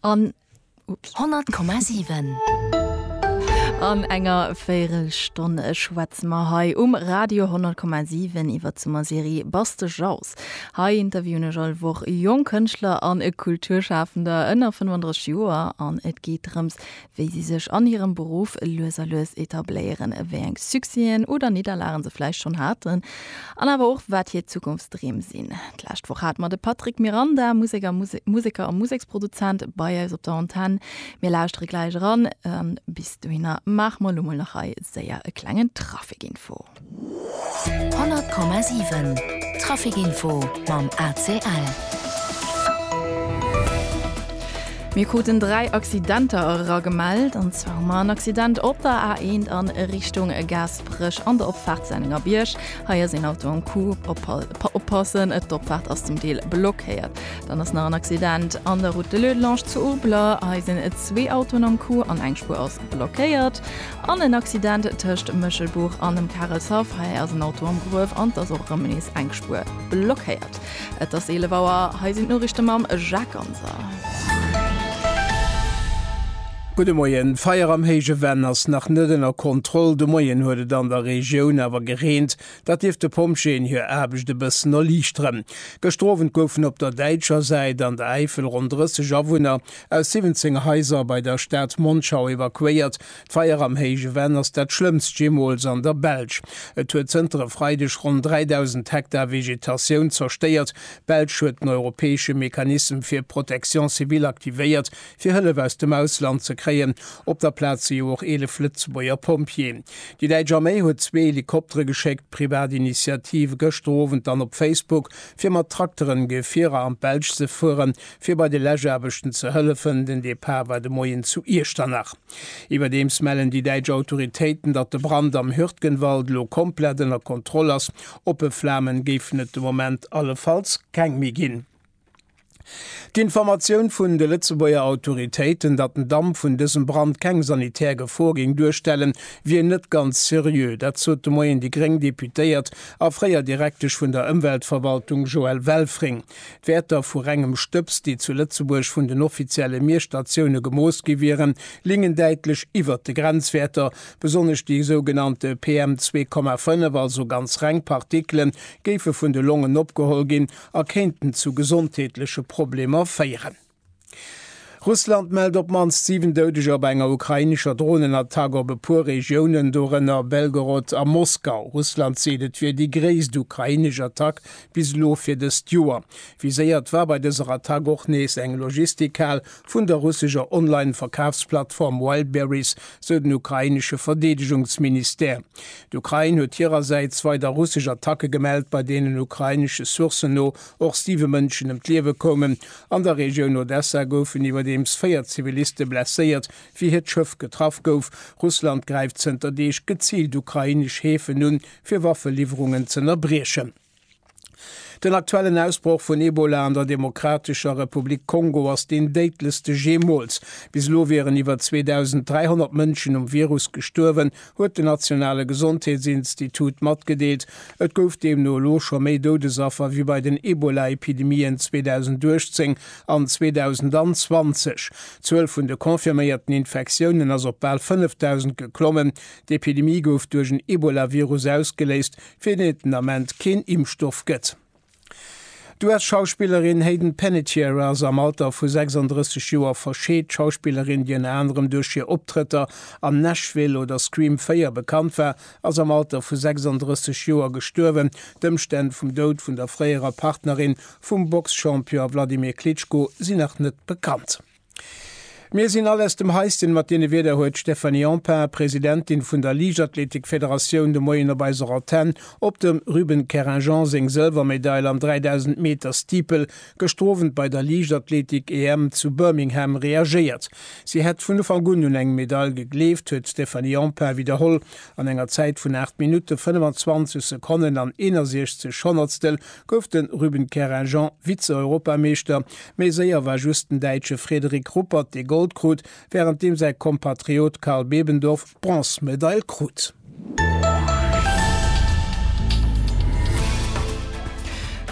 An 100,7. An enger Véirelstonn schwätze mer hei um Radio 100,7 iwwer d'Summerserie Bass de Jauss. Hei interviewen ech all Woch jonk Kënschtler an Kulturschafender ënner 35 Joer an et geet drëms, wéi si sech an hirem Beruff lues a lues etabléieren, wéi eng Succèsen oder Nidderlagen se vläicht schonn haten an awer och wat hir Zukunftsdreem sinn. D'lescht Woch hate mer de Patrick Miranda, Museker, Museker a Museksproduzent bei eis op der Antenn. Mir lauschtere gläich eran an bis dohinner maache mer elo mol nach hei séier e klengen Trafikinfo. 100,7 Trafic Info mam ACL. Mir kruten dräi Accidenter era gemellt, an zwar hu mar en Accident op der A1 an Richtung Gasbrëch an der Opfahrt Senninger Bierg. Hei ass een Auto am Coup, oppassen, et d'Opfahrt ass zum Deel blockéiert. Dann ass nach en Accident an der Route de Leudelange zu Urbler, hei sinn zwee Autoen am Coup an eng Spuer ass blockéiert. An en Accident tëscht Méchelbuch an dem Karelshaff. Hei ass en Auto am Gruef an et ass och erëm nees eng Spuer blockéiert. Et ass 11 Auer, hei sinn d'Noriichte mam Jacques Ganser. Gudde Moien, D'Feier am Héije Venn ass nach net ënner Kontroll. De Moien huet et an der Regioun awer gereent, dat dierft de Pompjeeën hir Aarbecht e bëssen erliichteren. Gëschter Owend goufen op der däitscher Säit an der Äifel ronn 30 Awunner Aus 17 Haiser bei der Stad Monschau evakuéiert. D'Feier am Héije Venn ass dat schlëmmst jeemools an der Belsch. Et huet zënter e Freideg ronn 3.000 Hektar Vegetatioun zerstéiert. D'Belsch huet den europäesche Mechanisme fir Protection civile aktivéiert, fir Hëllef aus dem Ausland ze kréien. Op der Plaz si jo och 11 Lëtzebuerger Pompjeeën. Déi däitsch Arméi huet zwee Helikoptere geschéckt. D'Privat Initiative gëschter Owend dann op Facebook, fir mat Trakteren Gefierer an d'Belsch ze fueren. fir bei de Läschaarbechten ze hëllefen. Den Depart war de Moien zu Iechternach. Iwwerdeems mellen déi däitsch Autoritéiten, datt de Brand am Hürtgenwald elo komplett ënner Kontroll ass. Oppe Flamen géifen et de Moment allefalls keng méi ginn. D'Informatioun vun de Lëtzebuerger Autoritéiten, datt den Damp vun dësem Brand keng sanitär Gefor géing duerstellen, wier net ganz seriö. Dat sot de Moien déi gréng Deputéiert a fréier Direktesch vun der Ëmweltverwaltung Joëlle Welfring. D'Wäerter vu rengem Stëbs, déi zu Lëtzebuerg vun den offizielle Miesstatioune gemooss gi wieren, lingen däitlech iwwert de Grenzwäerter. Besonnesch déi sougenannte PM2,5, also ganz reng Partikelen, géife vun de Longen opgeholl ginn a kéinten zu gesondheetleche Problemer féieren. Russland mellt op d'mannst 7 Doudeger bei enger ukrainescher Dronenattack op e puer Regiounen, dorënner Belgorod a Moskau. Russland seet, et wier déi gréisst ukrainesch Attack bis elo fir dëst Joer. Viséiert war bei dëser Attack och nees eng Logistikhal vun der russescher Online-Verkafsplattform Wildberries, sou den ukrainesche Verdeedegungsministère. D'Ukrain huet hirersäits weider russesch Attacke gemellt, bei deenen ukrainesche Sourcen no Och siwe Mënschen ëm d'Liewe koumen. An der Regioun Odessa goufen iwwerdeems véier Ziviliste blesséiert, wéi hiert Schëff getraff gouf. Russland gräift zënter Deeg geziilt ukrainesch Häfen un, fir Waffeliwwerungen z'ënnerbriechen. Den aktuellen Ausbroch vun Ebola an der Demokratescher Republik Kongo ass deen déidlechste jeemools. Bis elo wieren iwwer 2.300 Mënschen um Virus gestuerwen, huet den nationale Gesondheetsinstitut matgedeelt. Et gouf deemno elo scho méi Doudesaffer wéi bei den Ebola-Epidemien 2018 an 2020. D'Zuel vun de confirméierten Infektiounen ass op bal 5.000 geklommen. D'Epidemie gouf duerch en Ebola-Virus ausgeléist, fir deen et den Ament keen Impfstoff gëtt. D'US-Schauspillerin Hayden Panettiere ass am Alter vu 36 Joer verscheet. D'Schauspillerin, déi ënner anerem duerch hir Optrëtter an Nashville oder Scream 4 bekannt war, ass am Alter vu 36 Joer gestuerwen. D'Ëmstänn vum Doud vun der fréierer Partnerin vum Box-Champion Wladimir Klitschko sinn nach net bekannt. Mir sinn all aus dem Haisschen mat deene Wierder, huet d'Stéphanie Empain, Presidentin vun der Liichtathletikfederatioun, de Moien op eiser Antenn op dem Ruben Keringeon seng Sëlwermedail am 3000 Meter Steeple gestrowend bei der Liichtathletik-EM zu Birmingham reagéiert. Si hätt vun Ufank un un eng Medail gegleeft, huet d'Stéphanie Empain widderholl. An enger Zäit vun 8 Minutte 25 Sekonnen an 61 Honnertstel gouf de Ruben Kerajan Vize-Europameeschter. Méi séier war just den Däitsche Frederik Ruppert, dee Gold krut, wärend deem säi Kompatriot Karl Bebendorf d'Bronzmedail krut.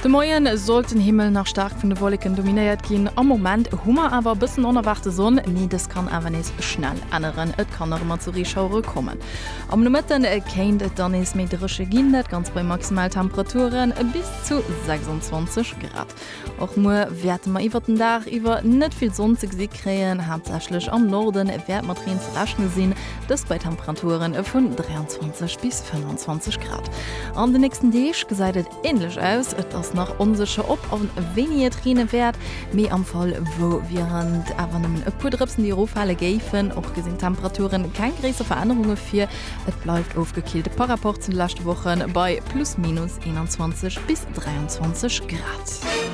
De Moien sollt den Himmel nach staark vun de Wolleken dominéiert ginn. Am Moment hu mer awer e bëssen onerwaarte Sonn, mee dës kann awer nees schnell änneren. Et kann nach ëmmer zu Reeschauere kommen. Am Nomëtten kéint et dann nees méi dréche ginn, dat Ganzt bei Maximaltemperature bis zu 26 Grad. Och muer wäerte mer iwwert den Dag iwwer net vill Sonn ze gesi kréien, haaptsächlech am Norde wäert mat Reen ze rechne sinn, dëst bei Temperaturen vun 23 bis 25 Grad. An de nächsten Deeg gesäit et. Ähnlech aus. Et ass nach onsécher ob an wéini et reene wäert, mee am Fall wou wieren et awer nëmmen e puer Drëpsen déi eroffale géifen. Och gesinn d'Temperaturen keng gréisser Verännerunge vir, et bleift ofgekillt par Rapport zu de leschte Wochen bei plus minus 21 bis 23 Grad.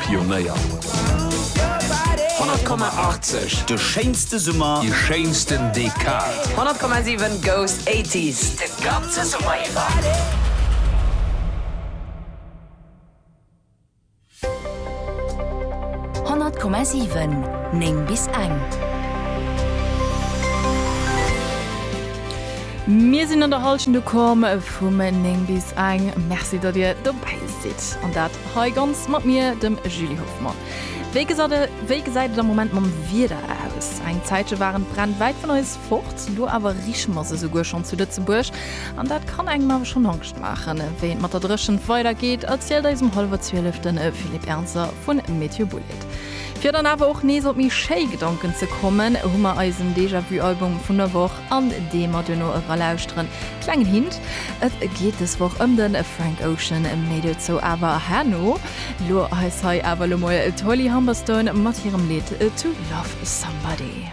Pionéier. 100,80, De schéinste Summer. Déi schéinsten Dekad. 100,7 goes 80s de ganze Summer iwwer. Honnert Komma siwen, néng bis eng. Mir sinn an der Hallschent ukomm vum néng bis eng. Merci, datt Dir dobäi sidd an dat Hei ganz mat mir, dem Julie Hoffmann. Wéi gesat e, wéi gesäit et am Moment mam Wieder aus? Eng Zäitche waren d'Bränn wäit vun eis fort, elo awer riche mer se souguer schonn zu Lëtzebuerg. An dat kann engem awer schonn Angscht maachen. Wéi et mat der Dréchent weidergeet, erzielt eis um hallwer Zwielef den Philippe Ernzer vu Météo Bouled. Fir dann awer och nees op méi schéi Gedanken ze kommen, hu mer eisen Déjà-vu-Album vun der Woch. An dee mer duerno era lauschteren. Klengen Hint, et geet des Woch ëm den Frank Ocean, méi dozou awer herno. Lo heis hei awer lo mol d'Holly Humberstone mat hirem Lidd To Love Somebody.